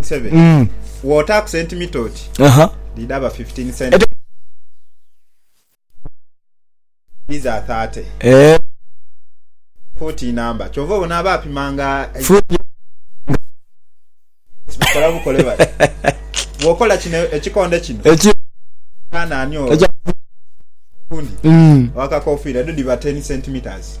7 Mm. wotaaku sentimita oti Aha. dhidhaba 15 centi Ete- dhiza 30 Eh, fuuti namba kyova obona abapimanga fu- bakola bukole bati bwokola kino ekikonde kino Eki- anani oyo Ekya- gundi Mm. wakakofiira dho dhiba 10 centimeters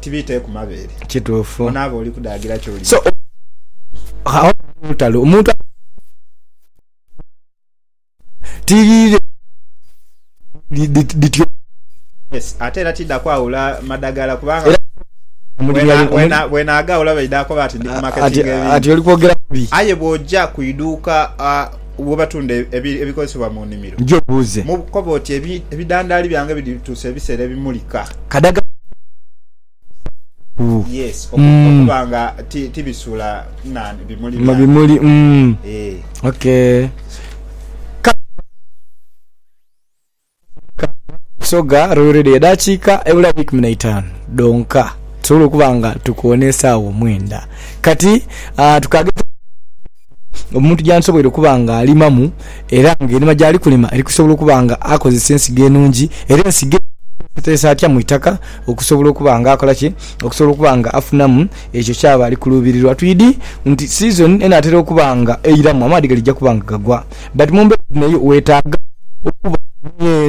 tibiita eku mabeere. Kituufu. Onaaba oli kudaagira ky'oli. So, awo ghaligho olutalo. Omuntu asobola okugamba nti, Ghano gh'oba otiiriire engoye dhino dhityo. Yes, ate era tiidha kwawula madagala kubanga Era omulimu yali, bwena, omulimu. bw'enaagaawula baidha koba nti ndi ku marketinga ebintu. Ati oli kwogera bubi. Aye bw'oja ku iduuka, a. Bw'obatunda ebikozesebwa mu nimiro. Nja obuuze. Koba oti, Ebidandaali byange bidhituusa ebiseera ebimulika? Kadaga nti bidhituusa ebiseera ebimulika ku. Okuba nga tibisuula bimuli byange. Bimuli, mm. Kale oba bidhituusa ebiseera ebimulika. Busoga Royal Radio edhakiika ebula wiiki mu naitaanu dhonka tusobole okuba nga tukoona esaawa omwenda. Kati ah, tukageza omuntu gyandisoboire okuba nga alimamu era nga erima gyali kulima eri kusobola okuba nga akozesa ensigo enungi era ensigo eno agikozesa atya mu itaka okusobola okuba nga akola ki okusobola okuba nga afunamu ekyo kyaba ali kuluubirirwa. Twidhi nti sizoni enaatera okuba nga eiramu amaadhi galija kuba nga gagwa. But mu mbeera dhino yo weetaaga okuba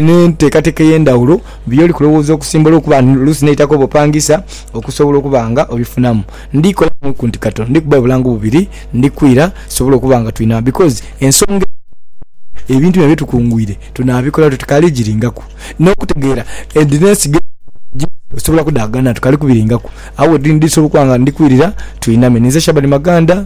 n'enteekateeka ey'endhawulo by'oli kulowooza okusimba olwokuba oluusi n'eitaka oba opangisa okusobola okuba nga obifunamu. Ndi kolamu ku nti Kato ndi kuba bulango bubiri ndi kwira tusobole okuba nga twina because ensonga eno ebintu bino bye tukungwire tunaabikola tuti kale giringaku n'okutegeera edhina ensigo edho gye osobola okudhaganha tukali kubiringaku. Agho we ndi sobola okuba nga ndi kwirira twiname. Ninze Shaban Maganda.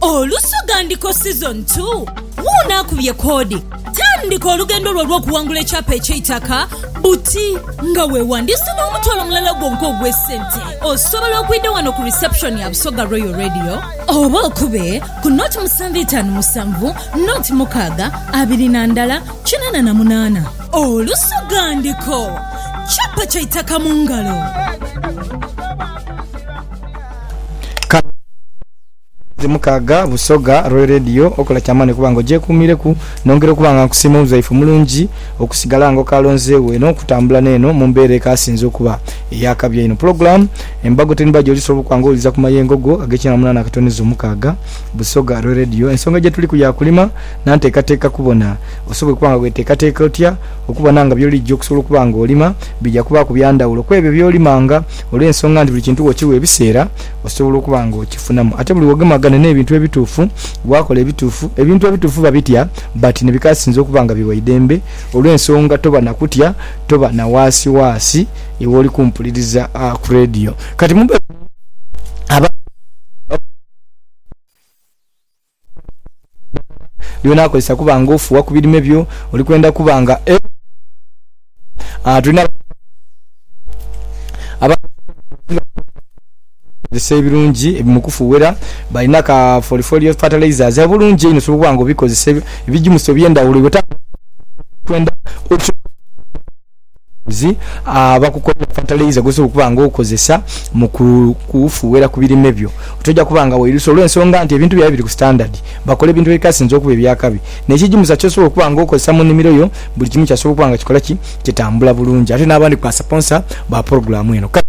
Olusoga Ndiko Season ii, Wuuno akubye koodi. Tandika olugendo lwo olw'okuwangula ekyapa eky'eitaka buti nga weewandiisa n'omutwalo mulala gwonka ogw'esente. Osobola okwidha wano ku reception ya Busoga Royal Radio oba okube ku nought musanvu itaanu musanvu nought mukaaga abiri na ndala kinaana na munaana. Olusoga Ndiko, Kyapa kya itaka mu ngalo. Mwezi mukaaga Busoga Royal Radio okola kyamaani okuba nga ogyekuumiireku. Nongera okuba nga nkusiima omuzaifu omulungi okusigala nga okalonzeegho eno okutambula n'eno mu mbeera ekaasinze okuba ey'akabi einho. Pulogulaamu Embago Ten Baji ojisooba okuba nga owuliriza ku mayengo go ag'ekyenda na munaana akatono izo mukaaga Busoga Royal Radio. Ensonga gyetuliku ya kulima na nteekateeka kubona osobola okuba nga weteekateeka otya okubona nga by'oligya okusobola okuba nga olima bigya kubaaku bya ndhawulo kw'ebyo by'olimanga olw'ensonga nti buli kintu wokiwa ebiseera osobola okuba nga okifunamu. Ate buli wogemagana n'ebintu ebituufu, wakola ebituufu, ebintu ebituufu babitya but nebikasinze okuba nga biwa eidembe olw'ensonga toba na kutya, toba na waasiwaasi iwe oli kumpuliriza ku radio. Kati mu mbeera eno abantu bakola. lyona akozesa kuba nga ofuuwa ku birime byo, oli kwenda kuba nga tulina abakozesa ebirungi mu kufughera, balina ka folifolio fertilizers obulungi einho osobola okuba nga obikozesa ebijimusa eby'endhaghulo. Abakozi abakukolera fatalayiza gw'osobola okuba nga okozesa mu kufuuhera ku birime byo toja kuba nga wairusa olw'ensonga nti ebintu byaibwe biri ku sitandadi. Bakola ebintu ebikasinze okuba eby'akabi. N'ekigimusa ky'osobola okuba nga okozesa mu nnimiro yo, buli kimu kyasobola okuba nga kikola ki? Kitambula bulungi. Ate n'abandi ku basaponsa ba pulogulaamu eno kale.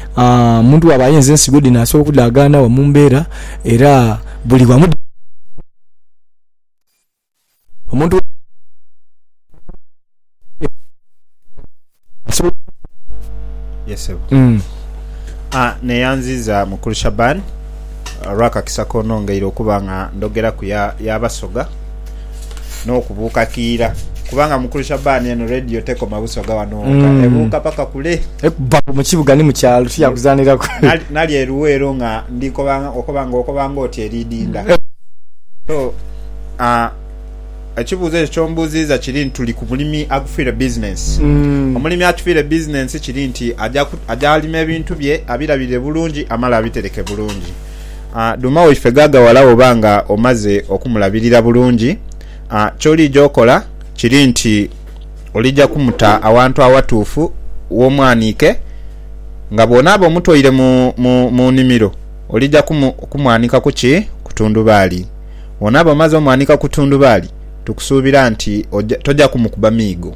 Omuntu bw'aba ayenze ensigo dhino asobola okudhaagaana wa mu mbeera era buli wamu dhitambula. Omuntu bw'aba asobola okudhaagaana Yes ssebo. wa mu mbeera asobola. Aa neyanziza mukulu Shaban olwakakisa konongeire okuba nga ndhogeraku ya ya Basoga. n'okubuuka kiira kubanga mukulu Shaban eno radio tekoma busoga wano woka mm. ebuuka paka kule ekuba mbu mukibuga ni mukyalo tiyakuzaniraku nali eruweero nga ndikobanga okobanga okobanga oti eridinda eh. so uh, ekibuuzo ekyo kyombuuziiza kiri nti tuli ku mulimi agufiire bizinensi mm. omulimi atufiire bizinensi kiri nti aja alima ebintu bye abirabirire bulungi amala abitereke bulungi Dhuuma waife ghaaghawala bw'oba nga omaze okumulabirira bulungi. Ky'oliija okola kiri nti oliija kumuta awantu awatuufu w'omwaniike. Nga bw'onaaba omutoire mu nnimiro, oliija kumwanika ku ki? Ku tundubaali. Bw'onaaba omaze omwanika ku tundubaali, tukusuubira nti toja kumukuba miigo.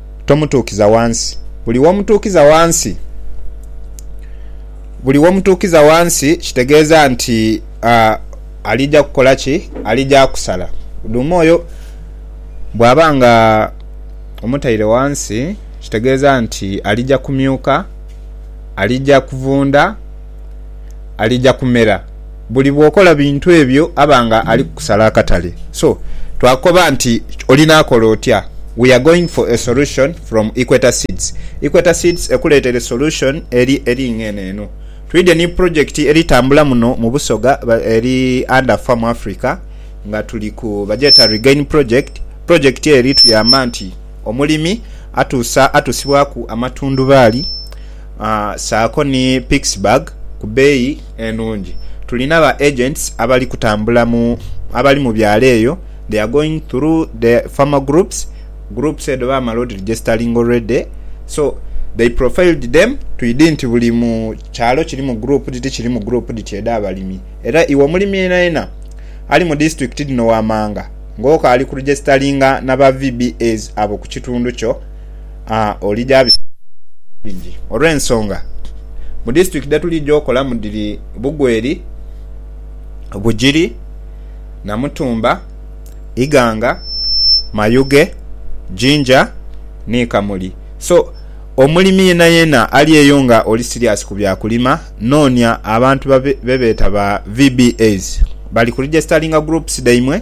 tomutuukiza wansi. Buli womutuukiza wansi, buli womutuukiza wansi kitegeeza nti alija kukola ki? Alija kusala. Dhuuma oyo bwaba nga omutaire wansi kitegeeza nti alija kumyuka, alija kuvunda. alija kumera buli bw'okola bintu ebyo aba nga ali kukusala akatale. So, twakoba nti olinaakola otya? We are going for a solution from Equator Seeds. Equator Seeds ekuleetere solution eri eri ng'eno eno. Twidhie ni project eri tambula muno mu Busoga eri under Farm Africa nga tuli ku bagyeta Regain Project. Project eri tuyamba nti omulimi atuusa atusibwaku amatundhubaali saako ni Pikesburg ku beeyi enungi. Tulina ba agents abali kutambula mu abali mu byalo eyo, they are going through the farmer groups, groups edho baamala odiregisteringa already so they profiled them to idi nti buli mu kyalo kirimu group dhiti kirimu group dhiti edh'abalimi era iwe omulimi yenayena ali mu disitulikiti dhino waamanga ng'okaali kuregisteringa na ba VBAs abo ku kitundu kyo. aa oli gya biseera bingi olw'ensonga mu disitulikiti dhe tuli gy'okolamu dhiri Bugweri, Bugiri, Namutumba, Iganga, Mayuge, Jinja ni Kamuli. So, omulimi yenayena ali eyo nga oli siriasi ku bya kulima, noonia abantu babe be beeta ba VBAs. Bali ku regisitalinga groups dhaimwe.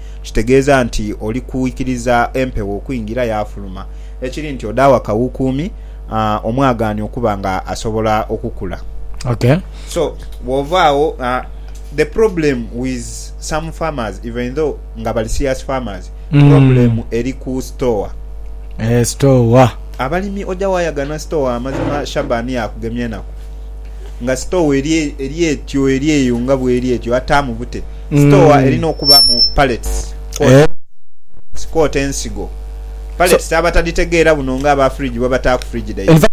kitegeeza nti oli kwikiriza empewo okwingira yaafuluma, ekiri nti odaagho akawuukuumi omwagaanio okuba nga asobola okukula. Ok. So, bwova agho, the problem with some farmers even though nga bali serious farmers, problem eri ku store. Eeh, store. Abalimi oja waayagana store amazima Shaban yaakugemya enaku. Nga sitoowa eri etyo eri eyo nga bw'eri etyo, ataamu bute? Sitoowa erina okubaamu pallets kwotaire ensigo. Pallets abatadhitegeera buno nga aba fridge bwebataaku fridge dhaibwe.